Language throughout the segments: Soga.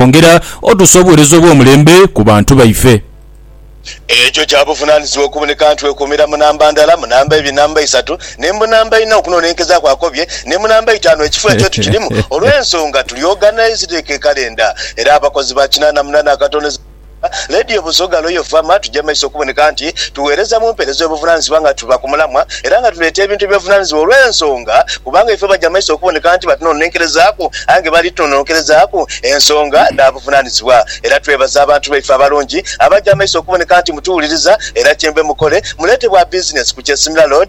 okwongera otuusa obuweereza obw'omulembe ku bantu baife. Ekyo kya buvunaanyizibwa okuboneka nti wekuumira mu namba ndala, mu namba ibiri, namba isatu, ni mu namba ina okunoonenkezaaku akobye, ni mu namba itaanu ekifo ekyo tukirimu, olw'ensonga tuli oganaizideku ekalenda era abakozi ba kinaana munaana akatondeza. Leediyo Busoga Royal Farmer tuja maiso okuboneka nti tugheereza mu mpeereza ey'obuvunaanyizibwa nga tuva ku mulamwa era nga tuleeta ebintu eby'obuvunaanyizibwa olw'ensonga kubanga ife baja maiso okuboneka nti batunononkerezaaku aye nga bali tunononkerezaaku ensonga dha buvunaanyizibwa era twebaza abantu baife abalungi abaja maiso okuboneka nti mutuwuliriza era kye mbe mukole muleete bwa bizinesi ku Kyesimira Road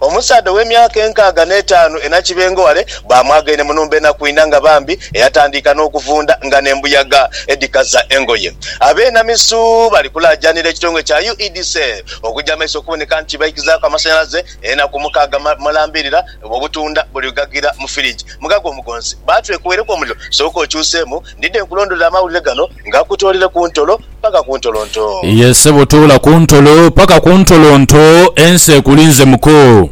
Omusaadha ow'emyaka enkaaga n'etaanu enakibengo ghale baamwagaine mu nhumba enaku inha nga bambi, eyatandiika n'okuvunda nga n'embuyaga edhikaza engoye. Abeenamisu bali kulaajanira ekitongole kya UEDCEL okuja mu maiso okuboneka nti baikizaaku amasanhalaze enaku mukaaga mulambirira obutunda buli ghughagira mu firigi. Mugaga omugonzi, Baatwekubaireku omuliro, sooka okyuseemu ndidhe nkulondolere amawulire gano. Nga kutoolere ku ntolo paka ku ntolo nto. Ye ssebo toola ku ntolo paka ku ntolo nto ensi ekulinze muko.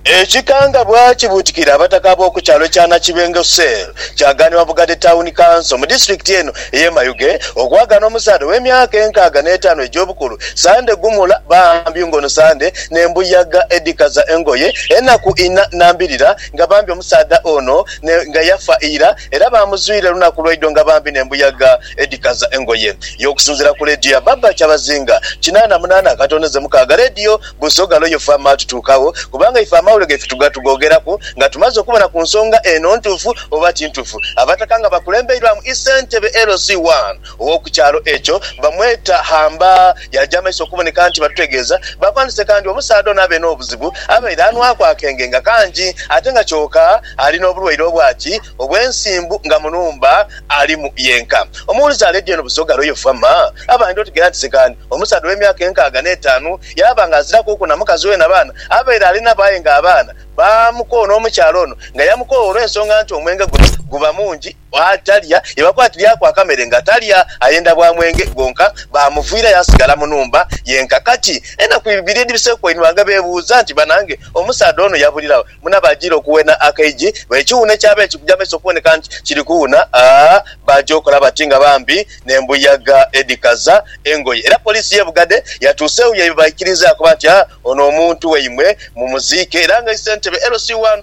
Ekikangabwa kibuutikira abataka ab'oku kyalo ekya Nakibengo Cell kyagaanibwa Bugadde Town Council mu disitulikiti eno ey'e Mayuge okwagaana omusaadha ow'emyaka enkaaga n'etaano egy'obukulu Sande Gumula bambi ng'ono Sande n'embuyaga edhikaza engoye enaku ina nambirira nga bambi omusaadha ono nga yafa ira Era baamuzuire lunaku lwaidho nga bambi n'embuyaga edhikaza engoye ye. Okusinziira ku leediyo ya Barbara Kyabazinga, kinaana munaana akatoonheze mukaaga, leediyo Busoga Loyo FM atutuukagho kubanga ife amawulire gaife tugatughoogeraku nga tumaze okubona ku nsonga eno ntuufu oba ti ntuufu. Abataka nga bakulembeirwamu Ssentebe LC1 Ow'oku kyalo ekyo bamweta Hamba. Yaja amaiso okuboneka nti batutegeeza bapandise kandi omusaadha ono abe n'obuzibu abaire anwaku akenge nga kangi ate nga kyoka ali n'obulwaire obwaki obw'ensimbu nga mu nhumba alimu yenka. Omuwulize aleedyo eno busoga lwe yo fama abandi otegeera nti sikandi omusaadha ow'emyaka enkaaga n'etaanu yaaba nga azirakuuku na mukazi we na baana abaire ali nabo aye nga abaana baamukoona omukyala ono nga yamukoowa olw'ensonga nti omwenge guno guba mungi Bw'atalya, ye bakwatiraku akamere nga talya, ayenda bwa mwenge gwonka. Baamuviira yaasigala mu nhumba yenka. Kati enaku ibiri edhibiseeku wainhwanga beebuuza nti, Banange, omusaadha ono yabulilawo muna baajiira okuwena akaigi? Bwa ekiwuune kyaba eki kuja maiso okuboneka nti kiri kuwuna, aa, baaja okola bati nga bambi n'embuyaga edhikaza engoye. Era poliisi y'e Bugadhe yatuuse eyo ye baikiriiza yaakoba nti, Aa, ono omuntu waimwe mumuziike. Era nga isentebe LC1,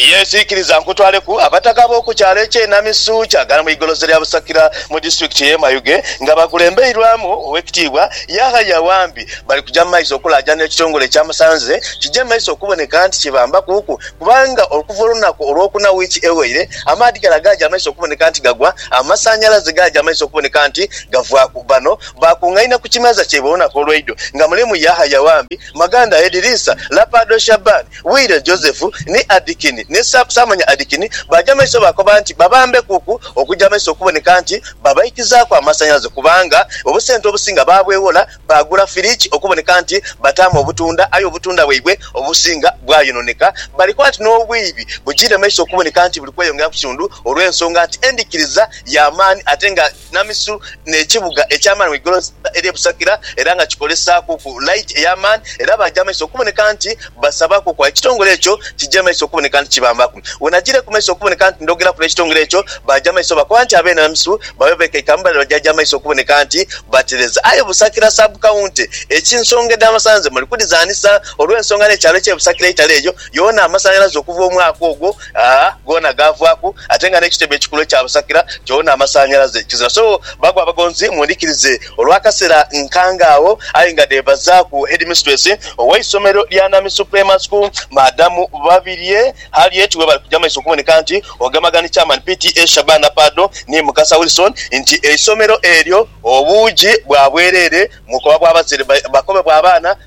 Yesu ikiriza nkutwaleku abataka b'oku kyalo eky'e Namisu Kyagala mu igoloze lya Busakira mu disitulikiti y'e Mayuge nga bakulembeirwamu Owekitiibwa Yahaya Wambi bali kuja mu maiso okulaajana ekitongole ekyamusanze kije mu maiso okuboneka nti kibambakuuku kubanga okuva olunaku olwokuna wiiki eweire amaadhi gala gaaja maiso okuboneka nti gagwa amasanhalaze gaaja maiso okuboneka nti gavaaku Bano baakungaine ku kimeeza kyaibwe olunaku olweidho nga mulimu Yahaya Wambi, Maganda Ediriisa, Lapado Shaban, Wire, Joseph, ni Adkin, ni Sa, saamanya Adkin, baaja mu maiso baakoba nti babambekuku okuja maiso okuboneka nti babaikizaaku amasanhalaze kubanga obusente obusinga baabweghola baagula firiki okuboneka nti bataamu obutunda aye obutunda bwaibwe obusinga bwayononeka. Bali kuba nti n'obwiibi bujiire maiso okuboneka nti buli kweyongera ku kitundu olw'ensonga nti endhikiriza ya maani ate nga Namisu n'ekibuga eky'amaani mu igolosa ery'e Busakira era nga kikolesaakuku laiti ey'amaani era baaja amaiso okuboneka nti basabakuku aye ekitongole ekyo kija amaiso okuboneka nti kibambaku. Wenajiire ku maiso okuboneka nti ndhogeraku n'ekitongole ekyo baaja amaiso bakoba nti abeene Namisu babe beekaikamu bale bajaja amaiso okuboneka nti batereza. Aye Busakira Sub County eky'ensonga edh'amasanhalaze muli kudhizaanisa olw'ensonga n'ekyalo eky'e Busakira eitale eyo yoona amasanhalaze okuva omwaka ogwo goona gaavwaku ate nga n'ekitebe ekikulu ekya Busakira kyona amasanhalaze kizira. So bago abagonzi mundhikirize olw'akaseera nkange agho aye nga dheebazaaku Headmistress ow'eisomero lya Nami Suprema School, Madam Babirye Harriet webali kuja maiso okuboneka nti ogemagana ni Chairman PTA Shabana Paado ni Mukasa Wilson nti eisomero eryo obuugi bwa bwereere mu bukoba bwa bazaire bakobe bwa baana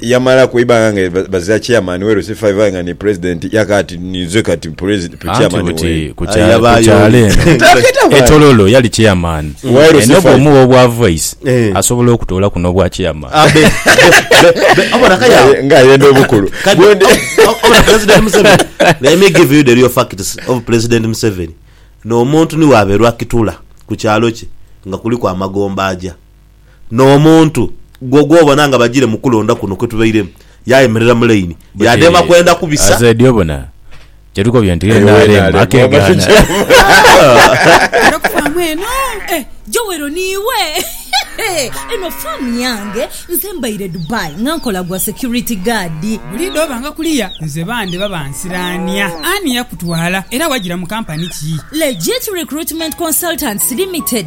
Yamalaku eibanga nga baziira chairman we Lusifa evayo nga ni president yaka ati ninze kati chairman we. Kukyalo eno e Tororo yali chairman eno bwomugha obwa voice asobola okutoolaku nobwa chairman. Nga ayenda obukulu. Obona president Museveni let me give you the real facts of president Museveni no muntu ni waberwa kitula ku kyalo kye nga kuliku amagombe aja n'omuntu gwo gw'obona nga bajiire mu kulonda kuno kwe tubairemu, yaayemerera mu laini, yaadema kwenda kubisa. Aze dio bona kyetukobye nti ye NRM akegaana. Era ku faamu eno eh, Joel niiwe? Eno faamu yange, nze mbaire Dubai nga nkola gwa security guard. Buli dh'obanga kuliya nze bande baba nsiraania. Ani yakutwala era wagira mu kampani ki? Legit Recruitment Consultants Limited.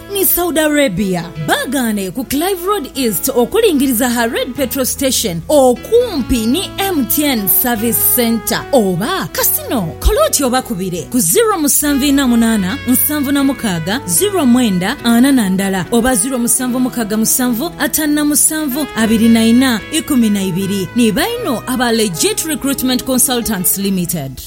Ni Saudi Arabia baagaane ku Clive Road East okulingiriza ha Red Petrol Station okumpi ni MTN Service Centre oba Casino. Kola oti obakubire ku ziro musanvu inha munaana nsanvu na mukaaga ziro mwenda ana na ndala oba ziro musanvu mukaaga musanvu ataanu na musanvu abiri na inha ikumi na ibiri. Ni baino aba Legit Recruitment Consultants Limited.